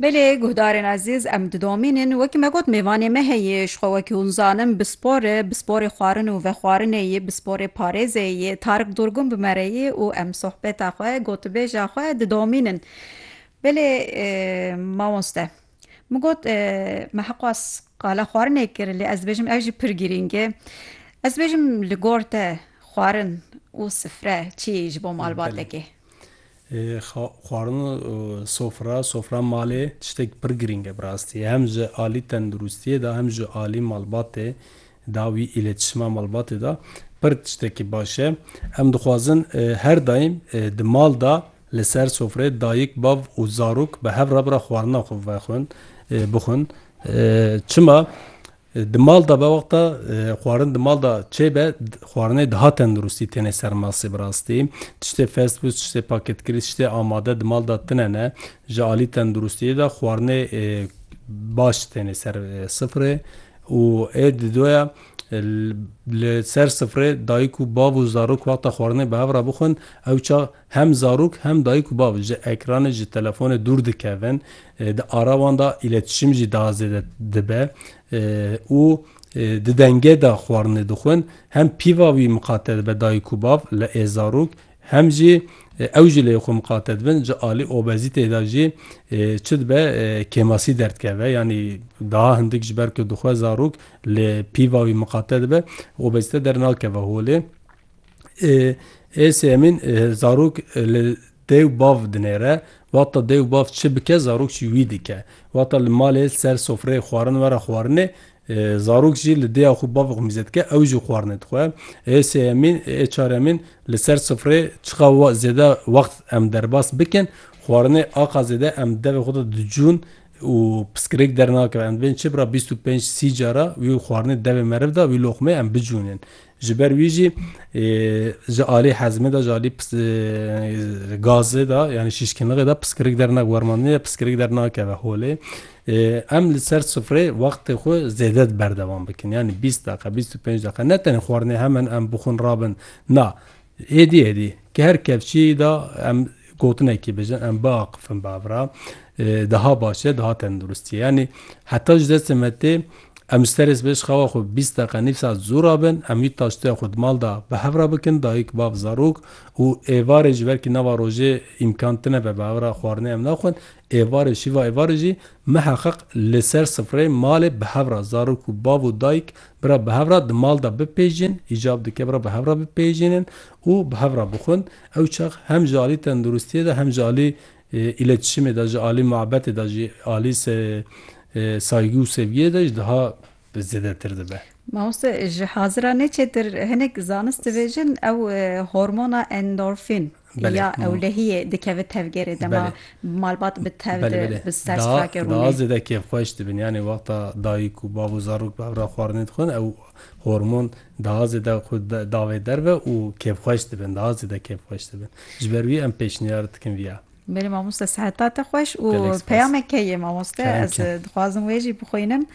Belê guhdarên ezîz em didomînin wekî me got mêvanê me heye ji xwe wekî hûn zanin bi spor e bi sporê xwarin û vexwarinê yê bi sporê parêzê yê Tarik Durgun bi me re yê û em sohbeta xwe gotibêja xwe didomînin Belê mamoste min got me heqû ez qala xwarinê kir lê ez dibêjim ev jî pir girîng e ez dibêjim li gor te xwarin û sifre çi yê ji bo malbatekê. Xwarin û sofra, sofra malê tiştek pir girîng e bi rastî. Hem ji alî tenduristiyê de hem ji alî malbatê de wî îletişima malbatê de pir tiştekî baş e. Em dixwazin her daîm di mal de li ser sofreyê dayik, bav û zarok bi hev re bi re xwarina xwe vexwin, bixwin. Çima? Di mal de be wexta xwarin di mal de çêbe xwarinê daha tenduristî têne ser masê bi rastî. Tiştê fast food, tiştê paketkirî, tiştê amade di mal de tine ne. Ji alî tenduristiyê de xwarinê baş têne ser sifrê û ê didoya li ser sifrê dayik û bav û zarok wexta xwarinê bi hev re bixwin ewça Hem zarok hem dayik û bav ji ekranê ji telefonê dûr dikevin, di ara wan de îletişîm jî daha zêde dibe û di dengê de xwarinê dixwin. Hem pîva wî miqate dibe dayik û bav li ê zarok hem jî ew ji lê xwe miqate dibin. Ji alî obezîteyê de jî çi dibe kêmasî derdikeve yanî daha hindik ji ber ku dixwe zarok li pîva wî miqate dibe obezîte dernakeve holê. Êsê Emîn zarok li dêw bav dinêre, wata dêw bav çi bike zarok jî wî dike. Wata li malê li ser sofreyê xwarin were xwarinê, zarok jî li dêya xwe bavê xwe mîze dike ew jî xwarinê dixwe. Êsê Emîn, ê çar Emîn li ser sofreyê çiqa zêde wext em derbas bikin, xwarinê aqa zêde em devê xwe de dicûn û piskirêk dernakeve. Em dibêjin çi bira bîst û pênc sî cara wî xwarinê devê meriv de wî loqmeyê em bicûnên. Ji ber wî jî ji alî hezmê de, ji alî gazê de yanî şîşkinlixê de piskirik dernake. Wermandinê de piskirik dernakeve holê. Em li ser sufrê wextê xwe zêde di berdewam bikin. Yanî bîst deqe, bîst û pênc deqe ne tenê xwarinê hemen em bixwin rabin. Na, êdî êdî ki her kevçiyî de em Gotinekî bijin em biaqifin bavra daha baş e, daha tenduristî ye. Yanî heta ji destê me tê em ji serê sibê ji xewa xwe bîst deqe nîv saet zû rabin, em wî taştoya xwe di mal de bi hev re bikin, dayik, bav, zarok û êvarê ji ber kî nava rojê îmkan tune be bavra xwarinê em naxwin, êvarê şîva êvarê jî miheqeq li ser sifrê malê bi hev re zarok û bav û dayik bira bi hev re di mal de bipejîn, îcab dike bira bi hev re bipejînin û bi hev re bixwin, ew çax hem ji alî tenduristiyê de hem ji alî îletişimê de, ji alî muebetê de, ji alî saygî û sevgiyê de ji daha zêdetir dibe. Mamoste ji haziran ê çêtir hinek zanist dibêjin ew hormona endorfîn ya ewlehiyê dikeve tevgerê dema malbat bi tev de bi ser strakê rûnê. Daha zêde kêfxweş dibin yanî wexta dayik û bav û zarok bi hev re xwarinê dixwin ew hormon Daha zêde xwe davê derve û kêfxweş dibin, daha zêde kêfxweş dibin. Ji ber wî em pêşniyar dikin vîya. Berê mamoste seheta te xweş û peyamek heye mamoste ez dixwazim wê jî bixwînim.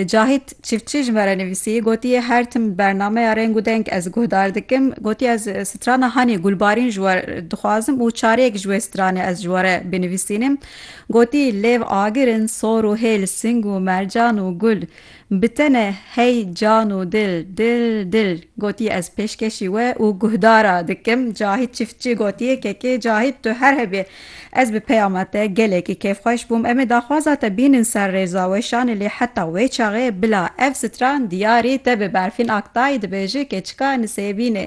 Cahît Çiftçî ji me re nivîsî gotiye her tim bernameya reng û deng ez guhdar dikim. Gotiye ez strana Hanê Gulbarîn ji we dixwazim û çareyek ji wê stranê ez ji we re binivîsînim. Gotî lêv agir in, sor û hêl, sing û mercan û gul. Bi tene hey can û dil, dil, dil gotiye ez pêşkêşî we û guhdar a dikim. Cahît Çiftçi gotiye kekê Cahît tu her hebî ez bi peyama te gelekî kêfxweş bûm. Em ê daxwaza te bînin ser rêza weşanê lê heta wê çaxê bila ev stran diyarî te be Berfîn Aktay dibêje keçika nisêbînê.